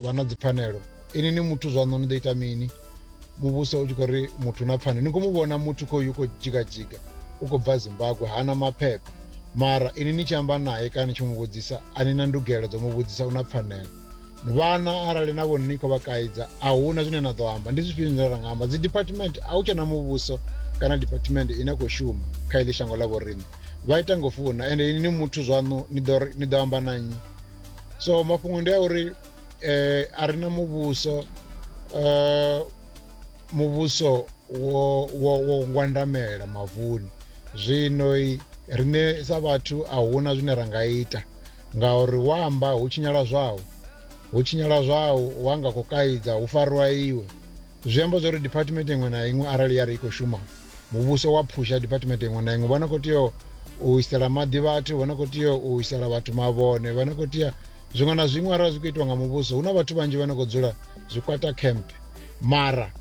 vha na dzipfanelo ini ni muthu zwaṋu ni ḓo ita mini muvhuso u tshi khou ri muthu na pfanelo ni khou mu vhona muthu khoyu khou dzhigadzhiga u khou bva zimbabwe hana maphepha mara ini ni tshi amba naye kana ni tshi mu vhudzisa a ni na ndugelo dzo mu vhudzisa u na pfanelo vhana arali na vhone ni khou vha kaidza a hu na zwine na ḓo amba ndi zwifhio zwine ra nga amba dzi department a hu tshena muvhuso kana department ine khou shuma kha iḽi shango ḽa vhoriṋe vha ita ngo funa ende ini ni muthu zwaṋu ni ḓo amba na nnyi so mafhungo ndi a uri um a ri na muvhuso um muvhuso wo wo wo ngwandamela mavuni zwino riṋe sa vhathu a huna zwine ra nga ita ngauri wa amba hu tshinyala zwau hu tshinyala zwau wa nga khou kaidza hu fariwa iwe Zwi amba zwa uri diphathimethe iṅwe na iṅwe arali ya ri i khou shuma muvhuso wa phusha diphathimethe iṅwe na iṅwe vha no khou tea u isela maḓi vhathu vha no khou tea u isela vhathu mavhone vha no khou tea zwiṅwe na zwiṅwe arali zwi khou itiwa nga muvhuso hu na vhathu vhanzhi vha no khou dzula zwikwata camp mara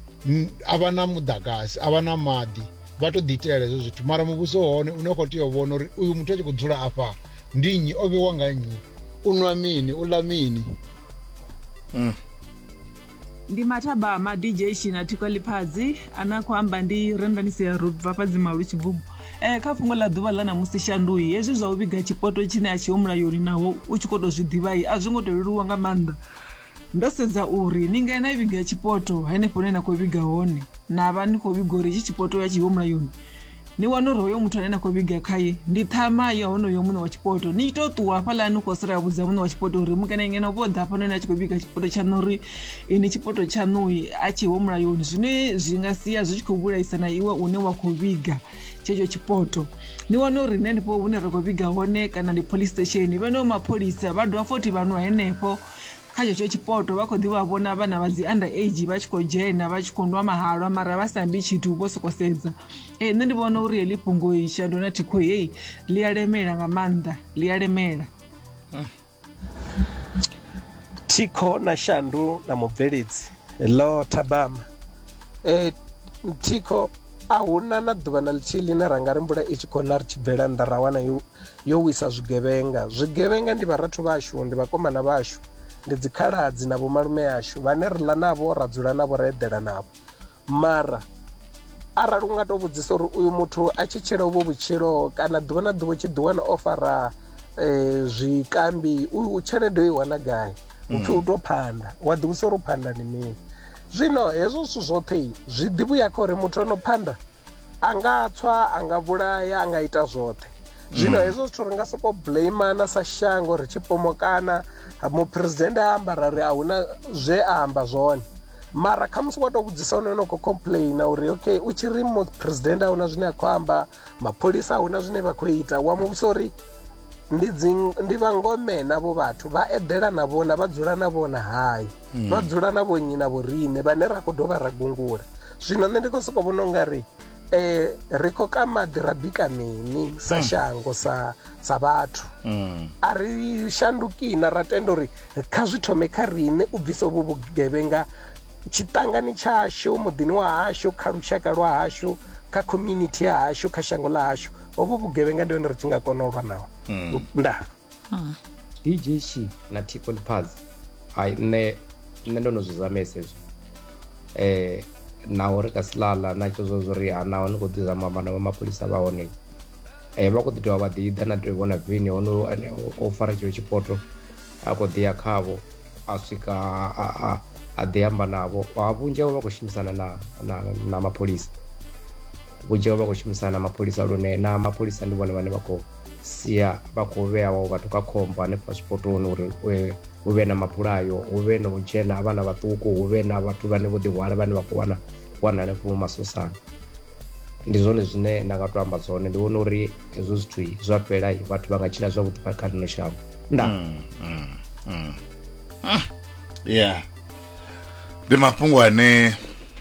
a vha na muḓagasi a vha na maḓi vha tou ḓiitela hezwo zwithu mara muvhuso hone une khou tea u vhona uri uyu muthu a tshi khou dzula afha ndi nnyi o vhewa nga nnyi u nwa mini u ḽa mini mm. ndi mathabama dj shina thikwa liphadzi ane a khou amba ndi rendanisi ya road vhafhadzi malu tshigubu um kha fhungo ḽa ḓuvha ḽa ṋamusi shandui hezwi zwa u vhiga tshipoto tshine a tshiho mulayoni naho u tshi khou tou zwi ḓivhai a zwi ngo tou leluwa nga maanḓa ndo sedza uri ni nga na vhiga tshipoto henefho hune na khou vhiga hone na vha ni khou vhiga uri hetshi tshipoto ya tshiho mulayoni ni wana uri hoyo muthu ane na khou vhiga khaye ndi ṱhama ya honoyo muṋe wa tshipoto ni tshi tou ṱuwa hafhaḽa ni khou sala ya vhudza muṋe wa tshipoto uri mukene ngeno vho ḓa hafhanoni a tshi khou vhiga tshipoto tshaṋu uri ini tshipoto tshaṋui a tshi ho mulayoni zwine zwi nga sia zwi tshi khou vhulaisa na iwe une wa khou vhiga tshetsho tshipoto ni wane uri nṋe ndifho hune ra khou vhiga hone kana ndi police station vheneo mapholisa vha dovha fothi vhanwa henefho Kha tshetsho tshipoto vha khou ḓi vha vhona vhana vha dzi under age vha tshi khou dzhena vha tshi khou nwa mahalwa mara vha sa ambi tshithu vho soko sedza ee nṋe ndi vhona uri heḽi fhungo isha ndona thikho heyi ḽi a lemela nga maanḓa ḽi a lemela thikho na shandu na mubveledzi lo thabama e, thikho a huna na ḓuvha na ḽithihi ḽine ra nga ri mvula i tshi khou na ri tshi bvela nnḓa ra wana yo yo wisa zwigevhenga. Zwigevhenga ndi vharathu vhashu, ndi vhakomana vhashu, ndi dzikhaladzi na vhomalume ashu vhane ri ḽa navho, ra dzula navho, ra eḓela navho. Mara arali u nga tou vhudzisa uri uyu muthu a tshi tshila uvho vhutshilo kana ḓuvha na ḓuvha u tshi ḓiwana o fara eh, zwikambi u tshelede u i wana gai upfi u tou phanda wa ḓivhudzisa uri u phanda ndi mini zwino hezwo zwithu zwoṱhe zwi ḓivhuya kha uri muthu ano phanda a nga tswa a nga vhulaya a nga ita zwoṱhe zwino hezwo zwithu ri nga soko blaimana sa shango ri tshi pomokana muphuresidennde a amba ra ri a huna zwe a amba zwone mara khamusi wa tou vhudzisa hone no khou complaina uri okay u tshi ri muphuresidennde a huna zwine a khou amba mapholisa a huna zwine vha khou ita wa muvhusa uri ndi dzi- ndi vhangome navho vhathu vha eḓela na vhona vha dzula na vhona hai mm. vha dzula na vhonnyi na vhoriṋe vhane ra khou dovha ra gungula zwino nṋe ndi khou sokou vhona u nga ri um ri khou ka maḓi ra bika mini sa mm. shango sa sa vhathu mm. a ri shandukina ra tenda uri kha zwi thome kha riṋe u bvisa vhu vhugevhenga tshiṱangani tshashu muḓini wa hashu kha lushaka lwa hashu kha community ya hashu kha shango ḽa hashu hovhu vhugevhenga ndi hone ri tshi nga kona u lwa naho mm. ndaa dj shi na ticon paz ai nṋe nṋe ndo no zwi zamesa hezwo eh naho ri ka silala na tsho zwo zwo ri ha naho ni khou ḓi zama amba na vha mapholisa vha hone eh vha khou ḓi dovha vha ḓi ḓa na tou vhona vini hono ane o- o fara tshilo tshipoto a khou ḓi ya khavho a swika a- a- a- a ḓi amba navho ha vhunzhi havho vha khou shumisana na na na mapholisa vhunzhi havho vha khou shumisana na mapholisa lune na mapholisa ndi vhone vhane vha khou sia vha khou vhea vhawo vhathu kha khombo hanefha zwipotoni uri eh, hu vhe na mabulayo hu vhe na u dzhena ha vhana vhaṱuku hu vhe na vhathu vhane vho ḓihwala vhane vha khou wana wana hanefho mu masosana ndi zwone zwine nda nga to amba zwone ndi vhona uri hezwo zwithu zwa fhela vhathu vha nga tshila zwavhuḓi kha ḽino shango nda mm, mm, mm. Ah, yeah ndi mafhungo ane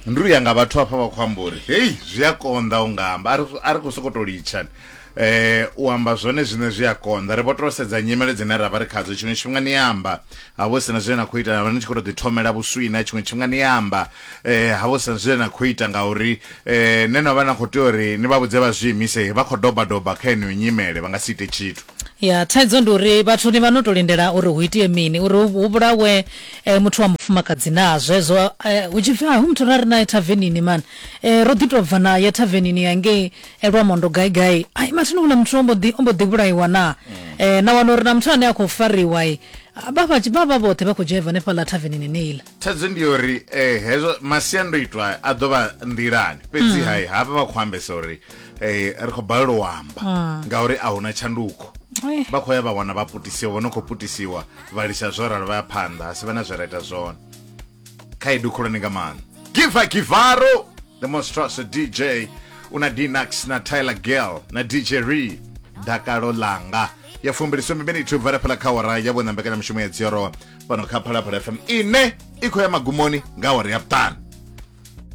ndi uya nga vhathu hafha vha khou amba uri hei zwi a konḓa u nga amba a ri khou sokou tou litshani eh u amba zwone zwine zwi a konḓa ri vho to sedza nyimele dzine ra vha ri khadzo tshiṅwe tshifhinga ni amba ha vho sina zwine na khou ita ni tshi khou tou ḓithomela vhuswina tshiṅwe tshifhinga ni amba eh ha vho sina zwine na khou ita ngauri eh ne na vha na khou tea uri ni vha vhudze vha zwi imise vha khou doba doba kha yeneyo nyimele vha nga si ite tshithu ya thaidzo ndi uri vhathu ni vha no to lindela uri hu itie mini uri hu vhulawe E, muthu wa mufumakadzi naa zwezwo e, hu tshi pfi a hu muthu ra ri nae thavenini man e, ro ḓi tou bva na ya thavenini ya ngei e, lwamondo gai gai ai mathina hula muthu ombo ḓi ombo ḓi vhulaiwa naa e, na wana uri na muthu ane a khou fariwa e, vha vha vha vha vhoṱhe vha khou dzhaiva hanefha ḽa thavenini neiḽa thaidzo ndi yori eh, hezwo masiandoitwa a ḓo vha nḓilani fhedzi hai hafha vha khou ambesa uri eh, ri khou balelwa u amba ngauri a huna tshanduko Ai. vha khou ya vha wana vha putisiwa vho no khou putisiwa vha lisa zwo ralo vha ya phanḓa a si vha na zwe ra ita zwone khaedu khulwane nga maanḓa giva givaro the most trusted dj una dinax na tyler girl na dj re dakalo langa ya fumbiliswe miminithu bva lafhala kha ora ya vhona mbekanyamushumo ya dziorowa fhano kha phalaphala fm ine i khou ya magumoni nga ora ya vhuṱanu